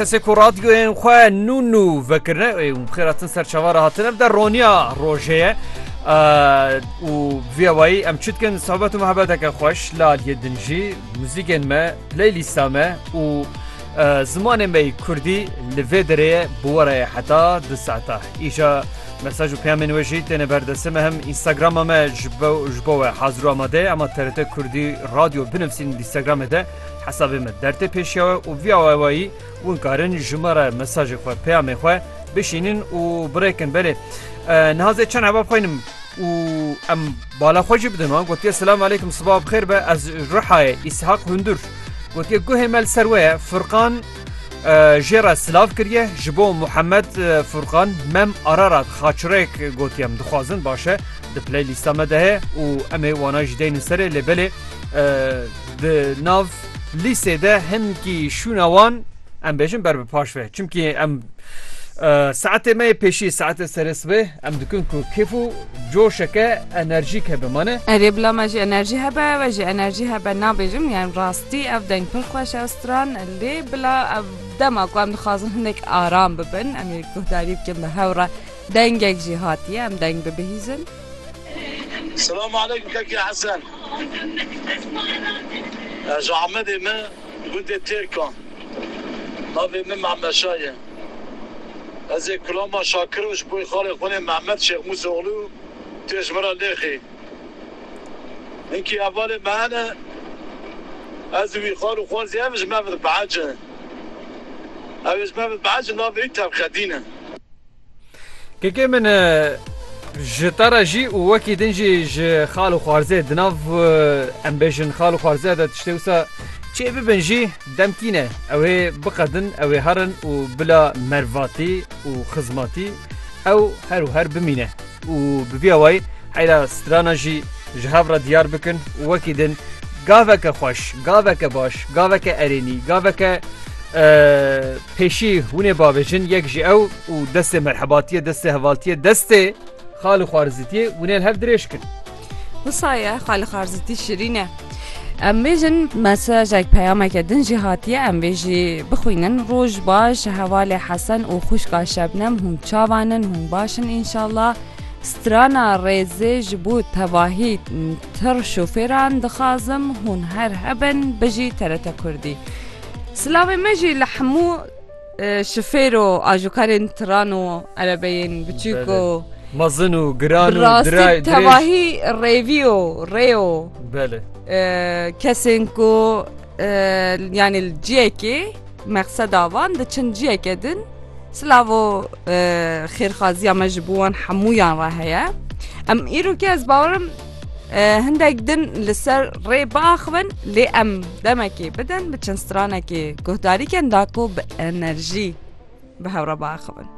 Kesê ku radyoyên xwe nû nû vekirine û bixêratin ser çava re hatine bide roniya rojê ye û vê wayî em çi dikin sohbet û mehebeteke xweş li aliyê din jî muzîkên me playlîsta me û zimanê me yî kurdî li vê derê ye bi we re ye heta di saeta îja mesaj û peyamên wê jî têne ber destê me hem înstagrama me ji bo we hazir û amade ye ema TRT kurdî radyo binivîsîn lînstagramê de Hesabê me dertê pêşiya we û vîya wewayî win karin ji me re mesajê xwe, peyamê xwe bişînin û birêkin. Belê niha zê çend hebab xwînim û em bala xwe jî bidin wan gotiye Selam aleykum sibav bi xêr be ez Rihayê Îshak Hundur gotiye guhê me li ser we ye Furqan jê re silav kiriye ji bo Muhemed Furqan mem Ararat xaçirêk gotiye em dixwazin baş e di playlîsta me de heye û em ê wana jî deynin serê lê belê Di nav lîsê de hinkî şûna wan em bêjin ber bi paş ve. Çimkî em saetê me yê pêşî saetê serê sibê em dikin ku kêf û coşeke enerjîk hebe mane. Erê bila me jî enerjî hebe ew e jî enerjî hebe nabêjim yan rastî ev deng pir xweş e stran lê bila ev dema ku em dixwazin hinek aram bibin em ê guhdarî bikin bi hew re dengek jî hatiye em deng bibihîzin. Selam aleykum Keke Hesen. Ez ji Amedê me gundê Têrkan. Navê min Mehmeşa ye. Ez ê Kulama Şakir û ji bo xalê xwinê Mehmet Şêx Mûsa Oglû tê ji min re lêxî. Hinkî hevalê me hene. Ez û wî xal û xwezî ev ji me ve dibehece. Ew ê ji me ve dibehece navê wî Tevxedîn e. Kekê min ji te re jî û wekî din jî ji xal û xwarzê di nav em bêjin xal û xwarzeya de tiştê wisa çê bibin jî demkî ne. Ew ê biqedin, ew ê herin û bila mervatî û xizmatî ew her û her bimîne. û bi vî awayî heyra strana jî ji hev re diyar bikin û wekî din gaveke xweş, gaveke baş, gaveke erênî, gaveke pêşî hûn ê bavêjin yek ji ew û destê merhebatiyê, destê hevaltiyê, destê xal û xwarizîtiyê hûn ê li hev dirêj kin. Wisa ye xali xarzitî şirîn e. Em bêjin mesajek peyameke din jî hatiye em vê jî bixwînin roj baş hevalê hesen û xuşka şebnem hûn çavanin hûn başin înşallah strana rêzê ji bo tevahî tir şofêran dixazim hûn her hebin bijî terete kurdî silavê me jî li hemû Şifêro ajokarên tiran û erebeyên biçûk û mezin û giran û dirayê tevahî rêvî û rê û belê kesên ku yanî li ciyekê mexseda van diçin ciyeke din silavo xêrxaziya me ji bo wan hemûyan re heye em îrokê ez bawerim Hindek din li ser rê biaxivin lê em demekê bidin bi çend stranekê guhdarî kin da ku bi enerjî bi hewre biaxivin.